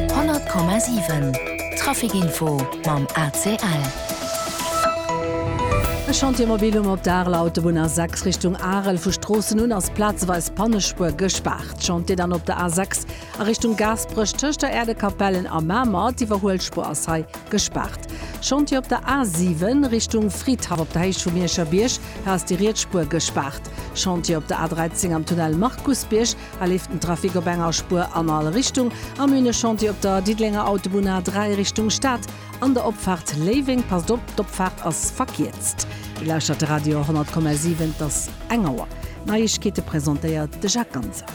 100,7 Trafic Info mam ACL. E Chantier mobil um op der Areler Autobunn A6 Richtung Arel. Vu Stroossen un ass plazeweis Pannespuer gespaart. D'Chantier dann op der A6 a Richtung Gaasperech tëscht der Äerdekapellen a Mamer. D'Iwwerhuelspuer ass hei gespaart. Chantier op der A7 Richtung Fridhaff op der Héicht vum Mierscher Bierg. Hei ass déi riets Spuer gespaart. Chantier op der A13 am Tunnel Markusbierg. Hei leeft den Trafic op enger Spuer an all Richtung. Am Une Chantier op der Diddelenger Autobunn A3 Richtung Stad an der Opfaart Léiweng. Passt op, d'Opfaart ass verkierzt. Dir lauschtert de Radio 100,7. Et ass eng Auer. D'Neiegkeete presentéiert de Jacques Ganser.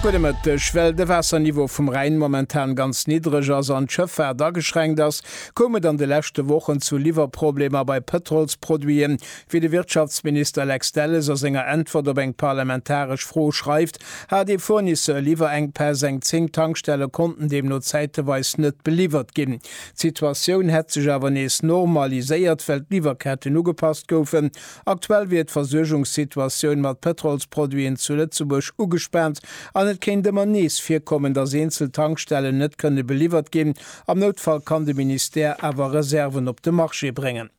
Gudde Mëtteg. Well de Waasserniveau vum Rhäin momentan ganz niddreg ass an d'Schëffaart ageschränkt ass, koum et an de leschte Wochen zu Liwwerproblemer bei Pëtrolsproduiten. Wéi de Wirtschaftsminister Lex Delles a senger Äntwert op eng parlamentaresch Fro schreift, hat ee Fournisseur Liwwerenkpäss, eng 10 Tankstelle konnten deemno zäiteweis net beliwwert ginn. D'Situatioun hätt sech awer nees normaliséiert, well d'Liwwerketten ugepasst goufen. Aktuell wier d'Versuergungssituatioun mat Pëtrolsproduiten zu Lëtzebuerg ugespaant an et kéint ëmmer nees virkommen, datt eenzel Tankstellen net kënne beliwwert ginn. Am Noutfall kann de Ministère awer Reserven op de Marché bréngen.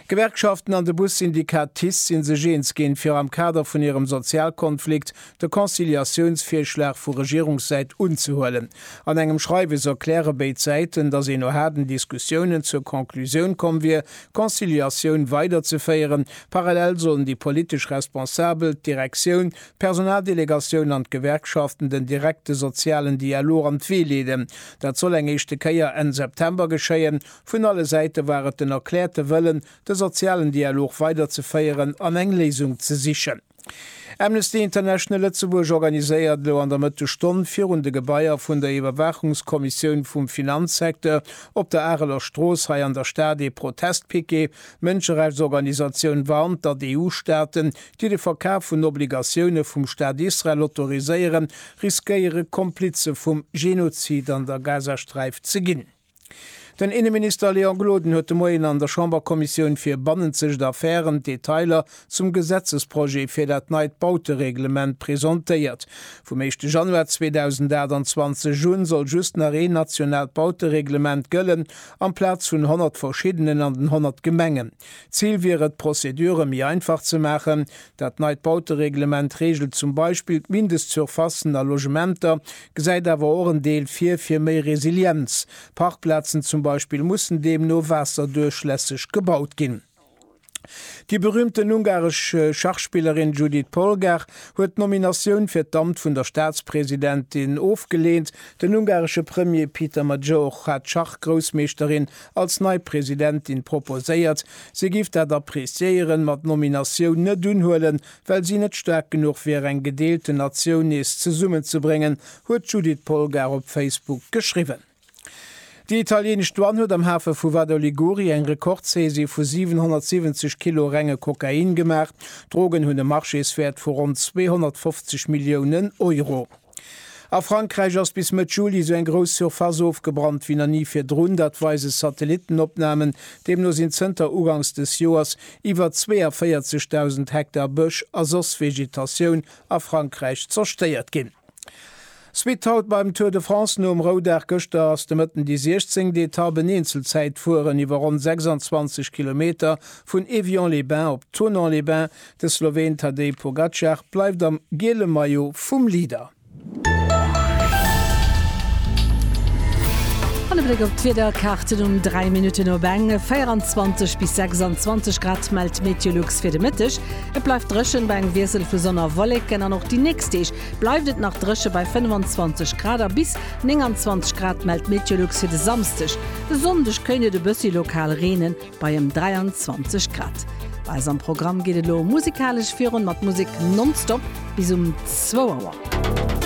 D'Gewerkschaften an de Bussyndikat TICE si sech eens ginn, fir am Kader vun hirem Sozialkonflikt de Conciliatiounsvirschlag vu Regierungssäit unzehuelen. An engem Schreiwes erkläre béid Säiten, datt een no haarden Diskussiounen zur Conclusioun komm wier, d'Conciliatioun weiderzeféieren. Parallel sollen déi politesch Responsabel, d'Direktioun, d'Personaldelegatioun an d'Gewerkschaften den direkte sozialen Dialog an d'Wee leeden. Dat soll eng éischte Kéier Enn September geschéien. Vun alle Säite war et den erkläerte Wëllen, de sozialen Dialog weiderzeféieren an eng Léisung ze sichen. Amnesty International Lëtzebuerg organiséiert elo an der Mëttesstonn virun de Gebaier vun der Iwwerwaachungskommissioun vum Finanzsecteur op der Areler Strooss hei an der Stad ee Protestpiquet. D'Mënscherechtsorganisatioun warnt, datt EU-Staaten, déi de Verkaf vun Obligatioune vum Staat Israel autoriséieren, riskéiere Komplize vum Genozid an der Gazasträif ze ginn. Den Inneminister Léon Gloden huet de Moien an der Chamberkommissioun fir bannenzegt Affären d'Detailer zum Gesetzesprojet fir dat neit Bautereglement presentéiert. Vum éischte Januar 2028 un soll just nach een nationaalt Bautereglement gëllen, amplaz vun 100 verschiddenen an den 100 Gemengen. D'Zil wier et, d'Prozedure méi einfach ze maachen. Dat neit Bautereglement reegelt zum Beispill d'Mindestsurfacen a Logementer, gesäit awer och en Deel vir fir méi Resilienz. Parkplazen zum Beispill mussen deemno waasserduerchlässeg gebaut ginn. Déi berüümten ungaresch Schachspillerin Judit Polgár huet d'Nominatioun fir d'Amt vun der Staatspresidentin ofgeleent. Den ungaresche Premier Peter Magyar hat d'Schachgroussmeeschterin als nei Presidentin proposéiert. Si giff dat appreciéieren, ma d'Nominatioun net unhuelen, well si net staark genuch wier eng gedeelte Natioun nees zesummenzebréngen, huet d'Judith Polgar op Facebook geschriwwen. Déi italienesch Douane huet am Hafe vu Vado Liguori eng Rekordsaisie vu 770 Kilo renge Kokain gemaach. D'Drogen hunn e Marchéswäert vu ronn 250 Milliounen Euro. A Frankräich ass bis Mëtt Juli esou eng grouss Surface ofgebrannt wéi nach ni virdrun. Dat weise Satellittenopnamen. Deemno sinn zënter Uganks des Joers iwwer 42.000 Hektar Bësch a soss Vegetatioun a Frankräich zerstéiert ginn. Suite haut beim Tour de France, Nom Roudag gëschter ass de Mëtten déi 16. Etapp, en Eenzelzäitfueren iwwer ronn 26 Kilometer, vun Évian-les-Bains op Thonon-les-Bains. De Sloween Tadej Pogacar bleift am giele Maillot vum Leader. An e Bléck op d'Wiederkaarten um 3 Minutten op eng, 24 bis 26 Grad mellt d'Meteolux fir de Mëtteg. Et bleift dréchen bei engem Wiessel vu Sonn a Wolleken an och déi nächst Deeg bleift et nach dréche bei 25 Grad a bis 29 Grad mellt d'Meteolux fir de Samsdeg. De Sonndeg kéint et e bëssi lokal reenen. bei ëm 23 Grad. Bei eis am Programm geet et elo musikalesch virun mat Musek non-stop bis um zwou Auer.